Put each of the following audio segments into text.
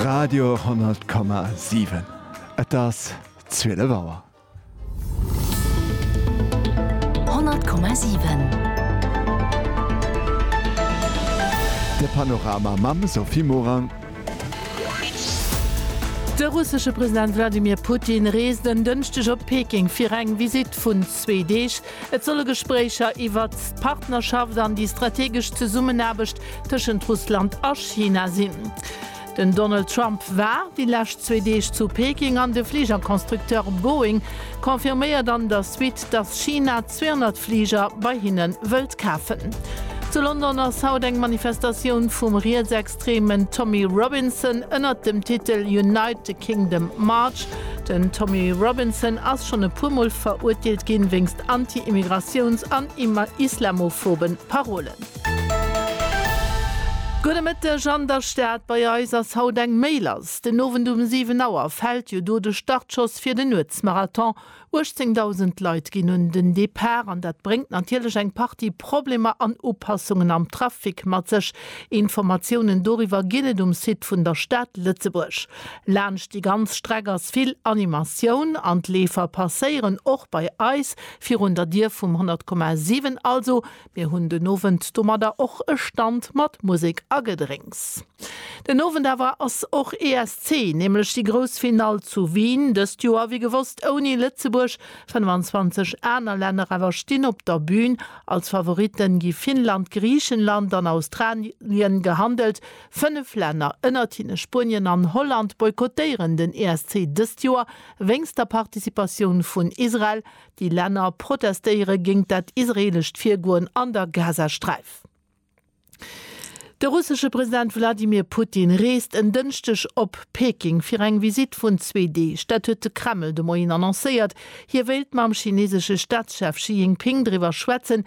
Radio 10,7 Et ass 12 Auer. 10,7 De Panorama mam Sophie Morang. De russesche President Wladimir Putin reest en Dënschdeg op Peking fir eng Visitt vun zwee Deeg. Et solle Gespréicher iwwert d'Partnerschaft an déi strategesch Zesummenaarbecht tëschent Russland a China sinn. Den Donald Trump war déi lescht zwee Deeg zu Peking an de Fligerconstructeur Boeing confirméiert an der Suite, datt China 200 Fliger bei hinne wëllt kafen. Zu London ass haut eng Manifestatioun vum riets-extreeme Extremen Tommy Robinson ënnert dem Titel Unite the Kingdom March. Den Tommy Robinson ass schonn e puer Mol verurteelt ginn, wéinst anti-Immigratiouns an islamophoben Parolen. Gudde Mëtteg an der Stad, bei eis ass haut eng méi lass. Den Owend um 7 Auer fält jo do de Startschoss fir den Nuetsmarathon. 18.000 Leit ginn un den Depart an dat bréngt natierlech eng Partie Problemer an Upassungen am Trafic mat sech. Informatiounen doriwwer ginn et um Site vun der Stad Lëtzebuerg. Laanscht déi ganz Streck ass vill Animatioun an d'Leefer passéieren och bei eis virun der Dier vum 100,7, also Mir hunn den Owend domadder och e Stand mat Musek a Gedrénks. Den Owend awer ass och ESC, nämlech déi grouss Finall zu Wien. Dëst Joer wéi gewosst ouni Lëtzebuerg. 25 aner Länner awer stinn op der Bün. Als Favoritten gi Finnland, Griichenland an Australien gehandelt. Fënnef Länner, ënnert hinne Spuenien an Holland, boykottéieren den ESC dëst Joer wéinst der Participatioun vun Israel. Déi Länner protestéiere géingt dat israeelescht Virgoen an der Gazasträif. De russesche President Wladimir Putin reest en Dënschdeg op Peking fir eng Visitt vun zwee Deeg. Dat huet de Kreml de Moien annoncéiert. Hie wéilt mam chineesesche Staatschef Xi Jinping driwwer schwätzen,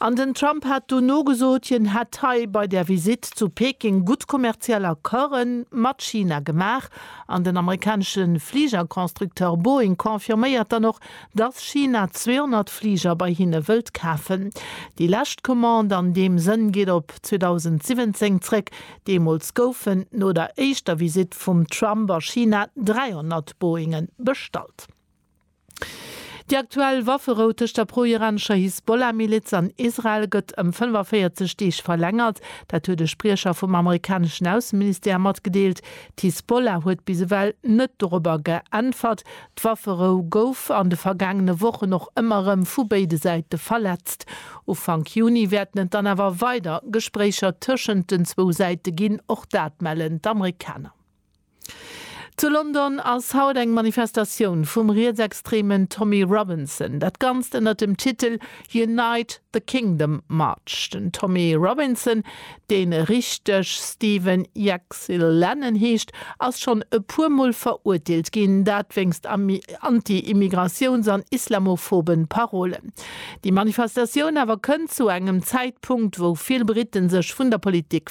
An den Trump hat dono gesot, hien hätt hei bei där Visitt zu Peking gutt kommerziell Accorde mat China gemaach. An den amerikanesche Fligerconstructeur Boeing confirméiert dann och, dass China 200 Fliger bei hinne wëllt kafen. Déi lescht Commande an deem Sënn geet op 2017 zréck. Deemools goufen no der éischter Visitt vum Trump a China 300 Boeingen bestallt. Déi aktuell Wafferou tëscht der pro-iranescher Hisbollah-Miliz an Israel gëtt ëm 45 Deeg verlängert. Dat huet e Spriecher vum amerikaneschen Ausseministère matgedeelt. D'Hisbollah huet bis ewell net dorobber geäntwert. D'Wafferou gouf an de vergaangene Wochen och ëmmer erëm vu béide Säite verletzt. Ufank Juni wäerten et dann awer weider Gespréicher tëschent den zwou Säite ginn, och dat mellen d'Amerikaner. Zu London ass haut eng Manifestatioun vum rietsextremen Tommy Robinson. Dat Ganzt ënnert dem Titel Unite the Kingdom March. Den Tommy Robinson, dee richteg Stephen Jack'Sy' Lennon heescht, ass schonn e puer Mol verurteelt ginn, dat wéinst anti-Immigratiouns an islamophobe Parolen. Déi Manifestatioun awer kënnt zu engem Zäitpunkt, wou vill Britten sech vun der Politik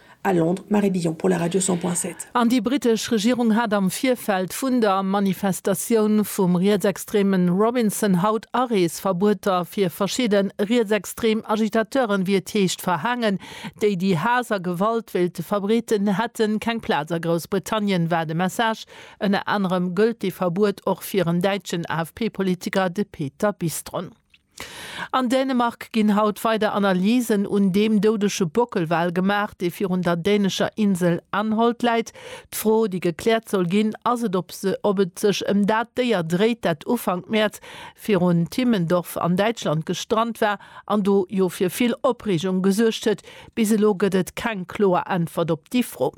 A Londres, Marie Billon pour la Radio 100.7. An déi brittesch Regierung hat am Virfeld vun der Manifestatioun vum rietsextreme Robinson haut Areesverbueter fir verschidde rietsextrem Agitateuren, wéi et heescht, verhaangen, déi déi Haass a Gewalt wéilte verbreeten, hätte keng Plaz a Groussbritannien, war de Message. Ënner anerem gëllt dee Verbuet och fir en däitschen AFP-Politiker, de Peter Bistron. An Dänemark ginn haut weider Analysen un deem doudege Bockelwal gemaach, dee virun der dänescher Insel Anholt läit. D'Fro, déi gekläert soll ginn, ass et, ob et sech ëm dat Déier dréit, dat Ufank Mäerz virun Timmendorf an Däitschland gestrant war an do jo fir vill Opreegung gesuergt huet. Bis elo gëtt et keng kloer Äntwert op déi Fro.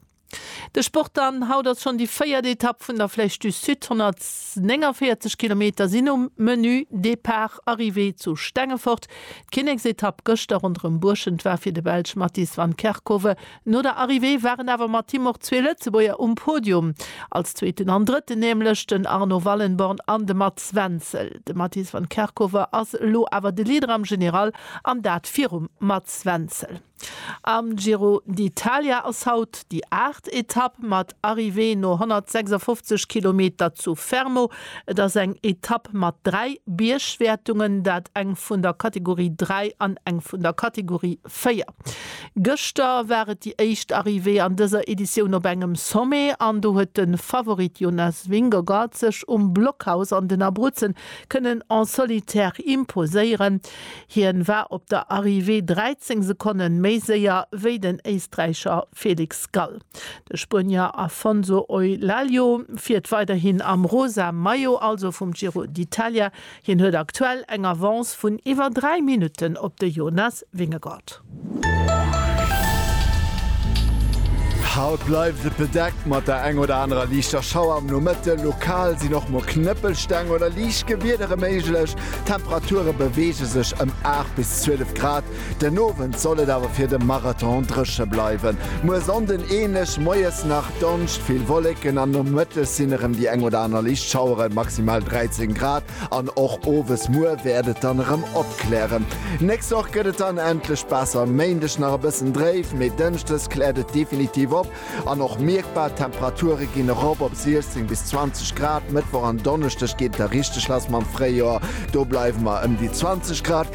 De Sport dann, Haut ass schonn déi véiert Etapp vun der Flèche du Sud. 149 Kilometer sinn um Menü, Depart, Arrivée zu Stengefort. D'Kinneksetapp gëschter ronderëm Buerschent war fir de Belsch Mattis van Kerckhove. No der Arrivée waren awer mat him och zwee Lëtzebuerger um Podium, als Zweeten an Drëtten nämlech den Arno Wallenborn an de Mats Wenzel. De Mattis van Kerckhove ass elo awer de Leader am General an dat virum Mats Wenzel. Am Giro d'Italia ass haut déi aacht Etapp mat Arrivée no 156 Kilometer zu Fermo. Et ass eng Etapp mat dräi Biergwäertungen, dat eng vun der Kategorie 3 an eng vun der Kategorie 4. Gëschter war et déi éischt Arrivée an dëser Editioun op engem Sommet an do huet de Favorit Jonas Vingegaard sech um Blockhaus an den Abruzzen kënnen en solitaire imposéieren. Hien war op der Arrivée 13 Sekonnen méi séier wéi den Éisträicher Felix Gall. De Spuenier Afonso Eulaglio fiert weiderhin am rosa Maillot, also vum Giro d'Italia. Hien huet aktuell eng Avance vun iwwer 3 Minutten op de Jonas Vingegaard. Haut bleift et bedeckt mat der eng oder anerer liichter Schauer am Nomëtte. Lokal sinn och mol Knëppelsteng oder liicht Gewiedere méiglech. D'Temperature beweege sech ëm 8 bis 12 Grad. Den Owend soll et awer fir de Marathon dréche bleiwen. Muer Sonnden änlech, moies nach Donscht vill Wolleken an nomëttes sinn erëm déi eng oder aner liicht Schaueren, maximal 13 Grad. An och owes, muer wäert et dann erëm opklären. Nächst Woch gëtt et dann endlech besser, Méindeg nach e bëssen dréif, mee Dënschdes kläert et definitiv op an och mierkbar. D'Temperature ginn erop op 16 bis 20 Grad. Mëttwoch an Donneschdeg geet et da richteg lass mam Fréijoer, do bleiwe mer ëm déi 20 Grad.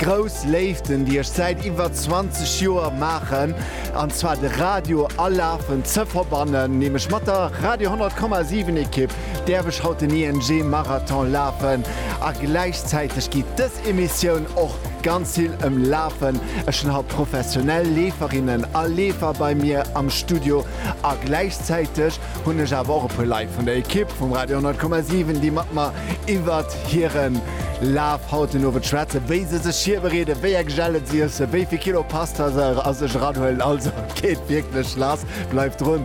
Grouss Léiften, déi ech säit iwwer 20 Joer maachen, an zwar de Radio a Lafen ze verbannen, nämlech mat der Radio 10,7 Ekipp, däerf ech haut den ING Marathon lafen. A gläichzäiteg geet dës Emissioun och ganz vill ëm Lafen. Ech hunn haut professionell Leeferinnen a Leefer bei mir am Studio a gläichzäiteg hunn ech awer och e puer Leit vun der Ekipp vum Radio 10,7, déi mat mer iwwer hiren Laf haut den Owend schwätzen, wéi se sech virbereeden, wéi eng Gelen se iessen, wéi vill Kilo Pasta se a sech eranhuelen. Also, geet wierklech lass, bleift drun!